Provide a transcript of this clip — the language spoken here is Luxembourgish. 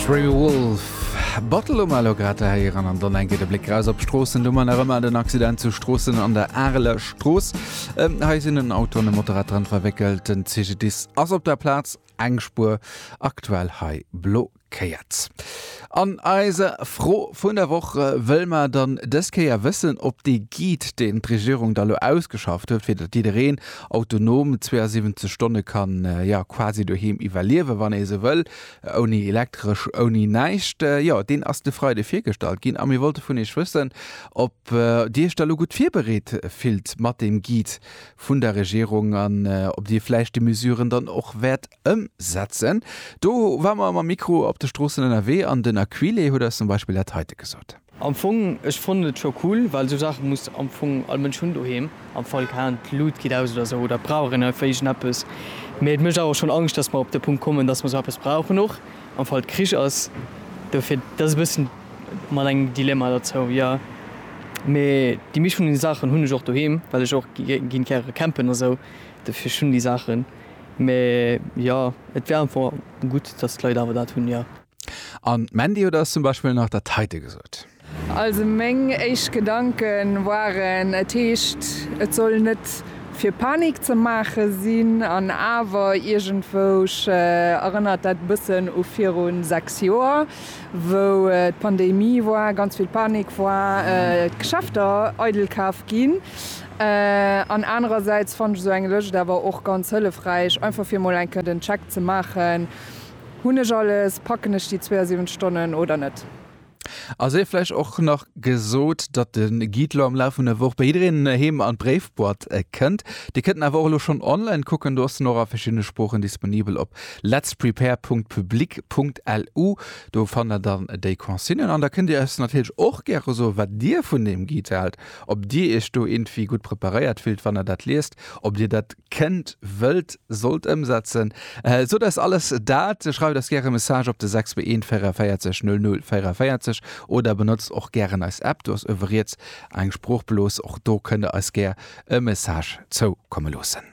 Dreamy Wolf, Bottle um Elo grad ze héieren an dann eng Kéier de Bléck raus op d'Stroossen. Do man nach ëmmer den Accident zu Stroossen an der Areler Strooss. Hei sinn en Auto an e Motorrad dran verwéckelt. Den CGDIS ass op der Plaz, eng Spuer aktuell hei blockéiert. An eiser Fro vun der Woch wëll mer dann dës Kéier wëssen, ob dee Guide, deen d'Regierung da lo ausgeschafft huet, fir datt jiddereen autonom 72 Stonne kann jo quasi doheem iwwerliewen, wann ee esou wëll, ouni Elektresch, ouni näischt. Jo, deen ass de Freide virgestallt ginn a mir wollte vun Iech wëssen, ob Dir Iech da lo gutt virbereet fillt mat deem Guide vun der Regierung an ob Dir vläicht déi Mesuren dann och wäert ëmsetzen. Do ware mer mam Mikro op de Stroossen ënnerwee an den Aquile huet eis zum Beispill dat heite gesot. Am Fong, ech fonnt et scho cool, well sou Saache muss am Fong all Mënsch hunn doheem, am Fall kaan d'Lut geet aus oder sou, oder et brauch een einfach iergendeppes. Mee et mécht awer schonn Angscht, dass mer op de Punkt kommen, dass mer sou eppes brauchen, och am Fall et Krich ass. Dofir, et ass e bëssen mat engem Dilemma derzou, jo. Mee déi meescht vun deene Saachen hunn ech och doheem, well ech och ginn gäre campen a sou, dofir ech hunn déi Saachen. Mee jo, et wär einfach gutt, dass d'Leit awer dat hunn, jo. An Mandy huet eis zum Beispill nach dat heite gesot. Also meng éischt Gedanken waren, et heescht et soll net fir Panik ze maache sinn, an awer iergendwousch erënnert dat e bëssen u viru 6 Joer, wou d'Pandemie war, ganz vill Panik war, d'Geschäfter eidel kaf ginn. An anerersäits fannen ech esou eng Lëscht awer och ganz hëllefräich, einfach fir emol enke den Check ze maachen, Hunn ech alles, packen ech déi 72 Stonnen oder net? A sief vläicht och nach gesot, datt de Guide elo am Laf vun der Woch bei jiddereen heem an d'Bréifboîte kënnt. Dir kënnt en awer och elo schonn online kucken, do ass en och a verschiddene Sproochen disponibel op letsprepare.public.lu. Do fannt der dann déi Consignen an da kënnt dir eis natierlech och gäre soen, wat dir vun deem Guide haalt. ob Dir Iech do iergendwéi gutt preparéiert fillt, wann Der dat liest, ob Dir dat kënnt, wëllt, sollt ëmsetzen. Sot eis alles dat, schreift eis gäre Message op de 641 44 00 44 oder benotzt och gären eis App, do ass uewe riets eng Sproochblos, och do kënnt Der eis gär e Message zoukomme loossen.